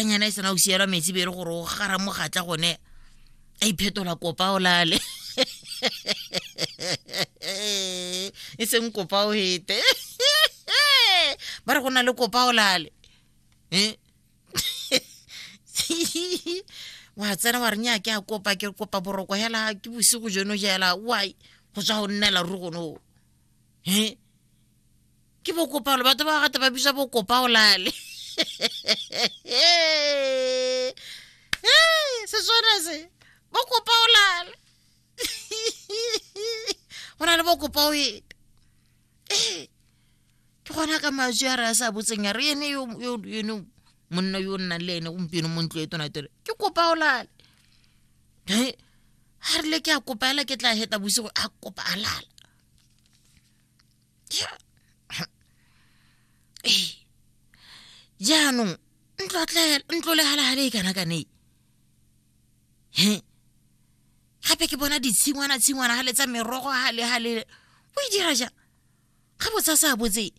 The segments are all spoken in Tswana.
nyana e sena go sielwa metsi bere gore o gara mogatla gone a iphetola kopa o lale e seng kopa o hete ba re go na le kopa o lale Eh? wa tsena wa re nya ke a kopa ke kopa boroko hela ke bosigo jono jela why go tswa go nnela ruri gono e ke bokopaolo batho ba gata ba bisa bokopaolale seswana se bokopaolale go na le bokopa o ete ee ke gona ka matswi a re a sa botseng ya re ene ene monna yo o nnang le ene gompieno mo ntlo e tona tere ke kopa o lale ga re le ke a kopa ela ke tla heta bosigo a kopa a lala ee jaanong ntlolegala gale e kana kane he gape ke bona ditshingwana tshingwana gale tsa merogo gale gale o e dira jang ga botsa sa botse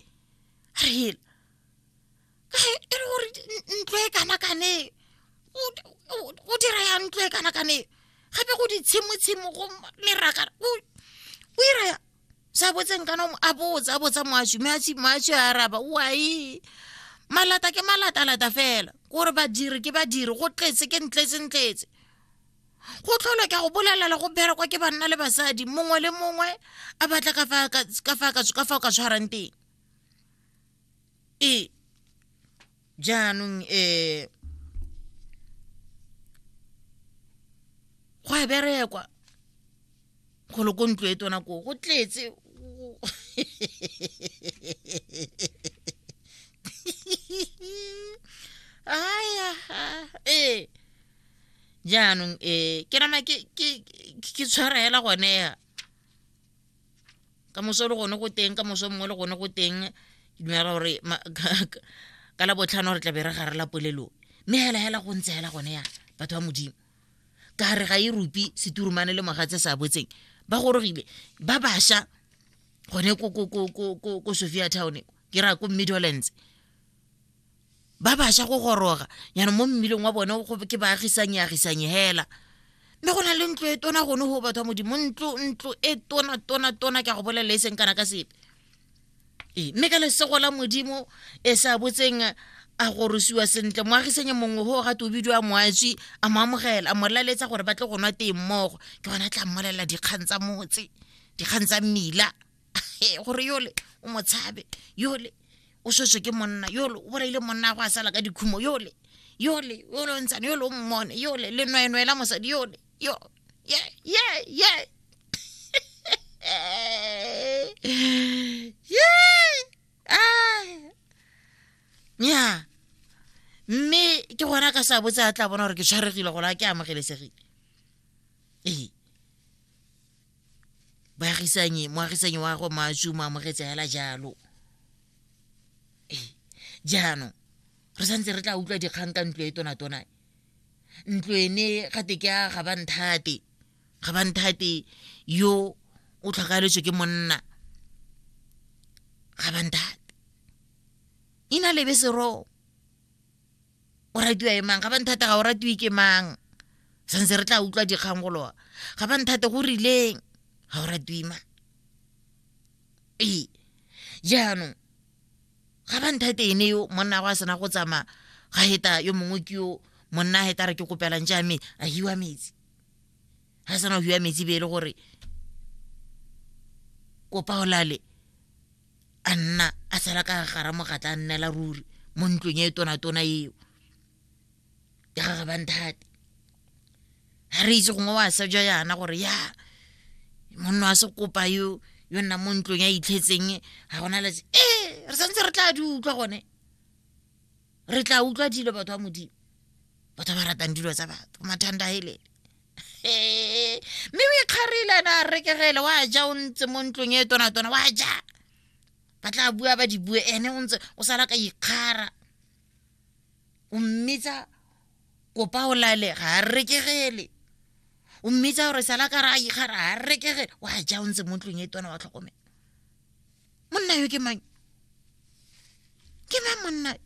a re hela ka e le gore ntlo e kana kane o dira ya ntlo e kana kane gape go ditshimotshimo go leraka o ira ya sa botseng kana a botsa a botsa moashi mme ashi moashi a araba wai malata ke malata-lata fela kore badiri ke badiri go tletse ke ntletse-ntletse go tlholo ka go bolelela go berekwa ke banna le basadi mongwe le mongwe a batla ka fa ka tshwarang teng ee jaanong um go a berekwa golo ko ntlo e tona koo go tletse aya ee eh. jaanong um ke nama ke tshwarela gone ya ka moso le gone go teng ka moso mongwe le gone go teng ke dumela gore ka la botlhano re tlabe re gare la polelo mme hela hela go ntse hela gone ya batho ba modimo ka re ga e rupi seturumane le mogatse sa botseng ba gorogile ba basha gone ko sophia town ke raya ko middlelands ba baša go goroga yana mo mmileng wa bone ke baagisanyeagisanye hela mme go na le ntlo e tona gone go batho ba modimo ntlo ntlo e tona tona tona ke a go bolelela e seng kana ka sepe ee mme ka lesego la modimo e sa botseng a gorosiwa sentle moagisanye mongwe go gate o bidiwa moatswi a mo amogela a mo laletsa gore ba tle go nwa teng mmogo ke gona tla mmolelela dikgang tsa motse dikgang tsa mmila gore yole o motshabe yole o swetswe ke monna yole o bolaile monna go a sala ka dikhumo yole yole yole o ntshane yole o mmone yole le nweenwee la mosadi yole yo ye ye ye nya mme ke gona ka sa botse a tla bona gore ke tshwaregile gola ke amogelesegile ee moagisanyi moagisanyi wa go masu mo amogetse hela jalo ee jaanong re santse re tla utlwa dikgang ka ntlo e tonatona ntlo ene gate ke a ga banthate ga banthate yo o tlhokaeletswe ke monna ga banthate ina lebe seroo o ratiwa e mang ga ba nthata ga o ratiwe ke mang santse re tla utlwa dikgang golowa ga ba nthate go rileng ga o ratiwe mang ee jaanong ga ba nthate ene yo monna go a sena go tsamaya ga heta yo mongwe ke yo monna a heta re ke kopelang jame a hiwa metsi ga sena go hiwa metsi be e le gore kopa o lale a nna a sala ka gara mogatla a nnela ruri mo ntlong e tona-tona eo ya ga gabanthate ga re itse gongwe wa sa ja yana gore ya monna wa sekopa yo yo nna mo ntlong ya itlhetseng ga gona letse ee re santse re tla di utlwa gone re tla utlwa dilo batho ba modimo batho ba ba ratang dilo tsa batho mathanda helele mme o ikgarile na a rekegele wa ja o ntse mo ntlong e tonatona wa ja ba tla bua ba di bue ene o ntse o sala ka ikgara o mmitsa kopa o lalega a rekegele o mmitsa gore sala ka ra ikgara a rekegele wa ja o ntse mo ntlong e tona wa tlhokomela monna yo ke mang ke mang monna